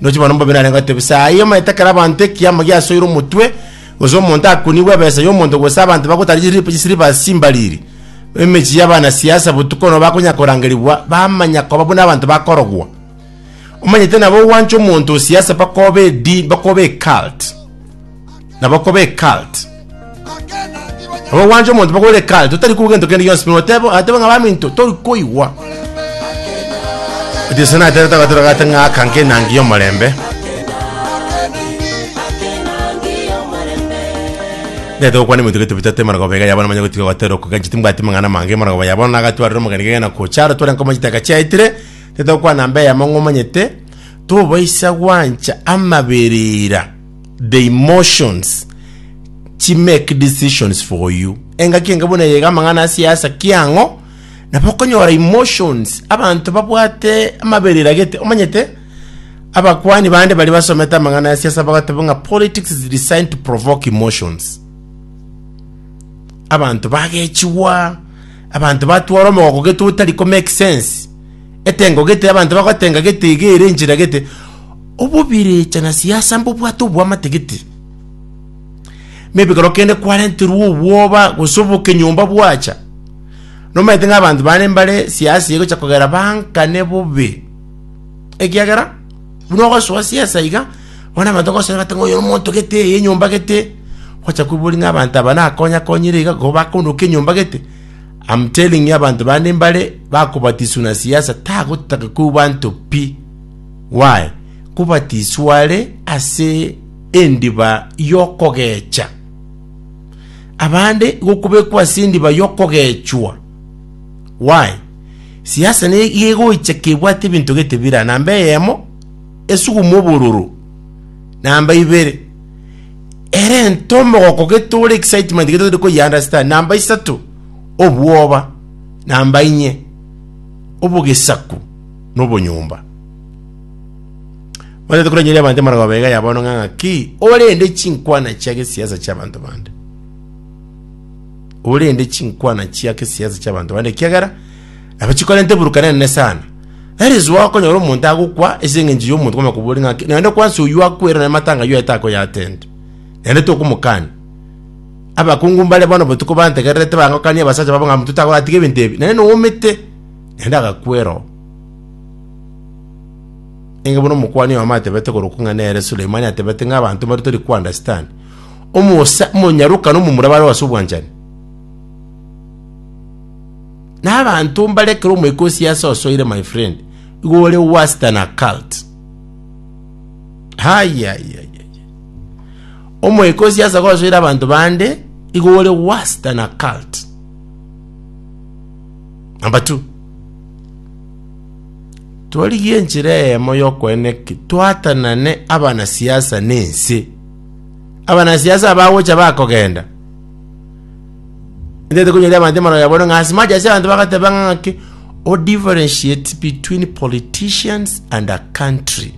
Ndoche bono mbobe narenge goteeba, Esaa eye omanyete ekero abanto ekiama giasoire omotwe, gose omonto akunigwe ebesa y'omonto, gose abanto bagotara chiripa chisiliva ase chimbariri, emechie y'abanasiasa, botuko nobo bakonya korangerigwa, bamanya koba buna abanto bakorogwa. Omanyete nabo ogwancha omonto o siasa bakoba edini, bakoba ecult. nabo koba ecult. Nabo gwancha omonto bakore ecult, otari kuba gento kende gionsi, buna oteba ateba ng'a baminto tori koigwa. Ati sana aterete agatoro gate ng'aka nke enangi y'omorembe. Ndete gokwana eminto gete bitatu emana goba iga yabo namanya gotiga gotera okoganchi timbwati mang'ana mange emana goba yabo na agatwarire omogeni gegena gocha aro tware nkomanyete agachiaetire ndete gokwana mbe yamo ng'omanyete tobaisa gwancha amaberera the emotions chi make decisions for you engaki enga buna yega amang'ana asiasa kiang'o nabo okonyora emotions abanto babwate amabere eragete omanyete abakwani bande bari basomete amang'ana ya siasa bagateba ng'a politics is designed to provoke emotions abanto bagechigwa abanto batwara omogoko geto otari ko make sense Etengo gete, abanto bagotenga gete, iga ere enchera gete, obobirecha na siasa mbobwate obwamate gete. Maybe ekero kende kwarenterwa obwoba gose obokenyomba bwacha, nomaete ng'a abanto bane mbare siasa egocha kogera bankane bobe, ekiagera buna ogosoa siasa iga, bono abanto bagosora bate ng'a oyo nomonto gete, eye enyomba gete, ogocha koiboria ng'a abanto aba nakonye akonyire iga, igo bakoondoka enyomba gete. Am telling you abanto bande mbare bakobatiswa na siasa tagotaka koigwa anto pi. Why? Kobatiswa are ase endiba yokogecha. Abande gokobekwa ase endiba yokogechwa. Why? Siasa ne yegoicha kebwate ebinto gete bira namba eyemo esuguma obororo namba ibere Erento omogoko getore excitement getari ko understand namba isato obwoba namba inye obogesaku no bonyomba Mwana tukura nyeri abante mara babega ya bono nganga ki ore ende chinkwana chia ke siasa cha bantu bande ore ende chinkwana chia ke siasa cha bantu bande kiagera Nabo chikorenta eburukana enene sana. That is why okonyora omonto agokwa ase eng'encho y'omonto kwama koboria ng'a ki- naende kwansa oyio akwera na matanga ayio aete akoyatenda. Naende tokomokania. Abakungu mbare bono botuko bantegererete bangokanie abasacha babo ng'a motito agoyatiga ebinto ebi. Naende noumete. Naende agakwera oo. Enge buna omokuani oyomo atebete korokwa ng'a nere Sulemani atebete ng'a abanto mbare tori ko understand. Omosa, omonyaroka na omomura bare ase obwanchani. Na abanto mbare ekero omoika osiase osoire my friend igo ore worse than a cult. Haya haya haya. Omoika osiase gosoire abanto bande igo ore worse than a cult. Number two. Twarigie enchera eyemo yokoena eki twatanane abanasiasa nense. Abanasiasa abagocha bakogenda Ndete kunyoria abantu emaro yabo ng'a ase mache ase abantu bagateba ng'aki o differentiate between politicians and a country.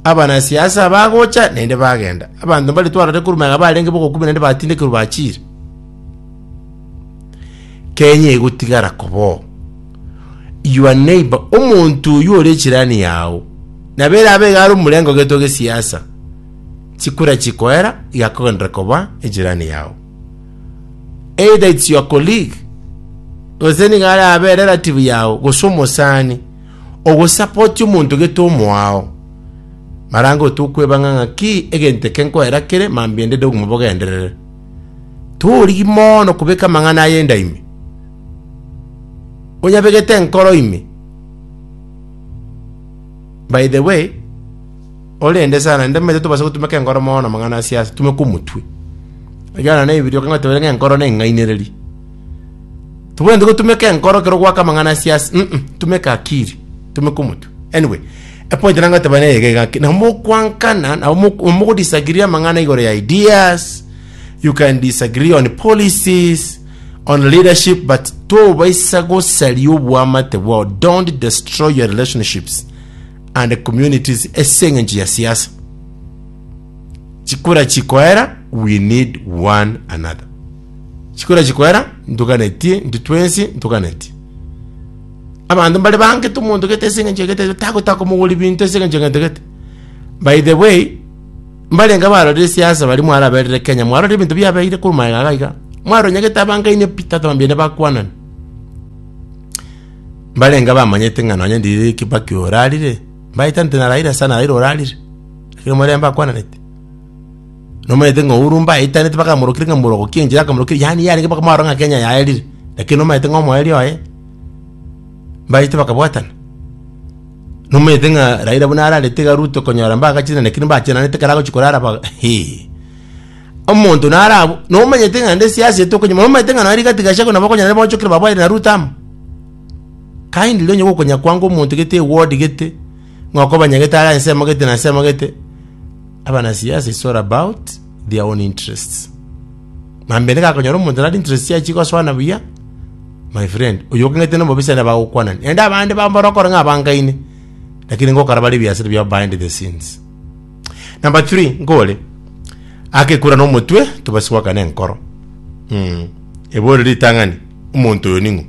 Abana siasa bagocha naende bagenda. Abantu mbari twarore kuruma ng'a barenge bogokumia naende batindekerwa bachire. Kenya egotigara koboo. Your neighbor omonto oyu ore chirani yao. Nabere abe garo murengo geto ge siasa. chikure chikoera igakogenderera koba ejirani yao. Either it's your colleague, gose nigo are abe relative yao, gose omosani, ogosapoti omonto gete omoao. Marango tokweba ng'a ng'aki egento eke nkoera kere mambia ende de obogima bogenderere. Torigi mono kobeka amang'ana aye enda ime. Onyabegete enkoro ime. By the way, Korende sana ntamanyete tobasa gotumeka enkoro mono namang'ana a siasa, tumeka omotwe. Ekiagera na Ebibilia okong'e otebete ng'a enkoro neng'ainereri. Tobwenerete gotumeka enkoro ekero ogwaka amang'ana a siasa, mm, tumeka akiri, tumeka omotwe. Anyway, epoint nanga goteba neye iga iga ki, nabo mokwankana, nabo mok- mogodisagree amang'ana igoro ya ideas, you can disagree on policies, on leadership, but tobaisa gosaria obwamate bwao, don't destroy your relationships. and communities ase engencho ya siasa. Chikura chikoera we need one another. Chikura chikoera ntuganetie ntu twensi ntuganetie. Abanto mbare bangete omonto gete ase engencho gete tagotaka omogori binto ase engencho gete gete. By the way, mbarenga barorire siasa bari mwaraberire Kenya mwarorire ebinto biabeire kuru maega gaiga. Mwaronyagete abangaine Peter Thambia ne bakwanani. Mbarenge abamanyete ng'a nonya ndiriri Kibaki orarire, mbaetante na Raila sana Raila orarire, lakini omorembe akwananete. Nomanyete ng'a Uhuru mbaetanete mpaka amorokire ng'a morogokia enchera akamorokia, yaani yarenge mpaka mwarora ng'a Kenya yaerire, lakini nomanyete ng'a omoerio oye, mbaete bakabwatana. Nomanyete ng'a Raila buna ararete iga Ruto konyora mbagachi lakini mbachenanete ekero agochia korara ba hii. Omonto narabo, nomanyete ng'a nde siasi ete okonyuma, nomanyete ng'a nari gati Gachagua nabo okonyara nere boonchokire baboyere na Ruto amo. Kindly onye gokonya kwango omonto gete eward gete, ng'a okobanyagete are ase amagete na ase amagete, abanasiasa it's all about their own interests. Mambende gakonyora omonto nari interest yaye chigosoana buya, my friend, oyo okong'ete nobobe siana bagokwanani. Naende abande bambare okore ng'a abangaine, lakini ngokora bare ebiasara biabo behind the scenes. Number three, nkore akekura nomotwe tobasibwakane enkoro. Mm. Ebore ritang'ani, omonto oyo ning'o?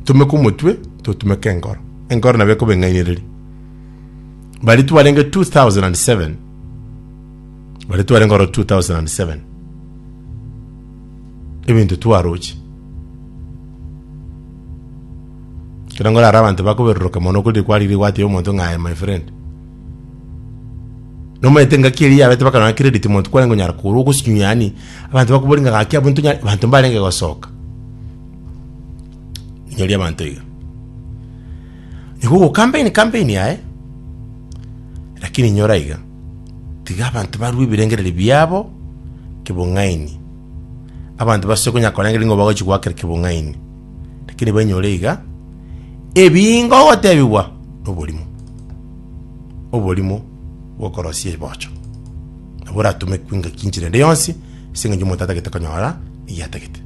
Tumeka omotwe, totumeka enkoro. Enkoro nabo ekoba eng'ainereri. Bari twarenge 2007. Bari twarenge oro 2007. ebinto twaroche. Ekero ngorara abanto bakoberoroka mono okori kwarire gwateba omonto ng'a aye my friend. Nomanyete ngaki eria yabete bakarora ng'a credit monto kwarenge onyara kogora ogosinywa yaani abanto bakobori ng'a gaki abwo ntonya abanto mbarenge gosoka. Inyoria abanto iga. Nigo ogo campaign campaign yaye, lakini inyora iga. Tiga abanto barue ebirengererio biabo kebung'aini. Abanto basoe konya korengereria ng'a bagochi goakera kebung'aini, lakini banyore iga ebingo gotebigwa noborimo, oborimo bw'okorosia ebocho, nabo oratumekwe engaki enchera ende yonsi ase eng'encho omonto atagete konyora egiatagete.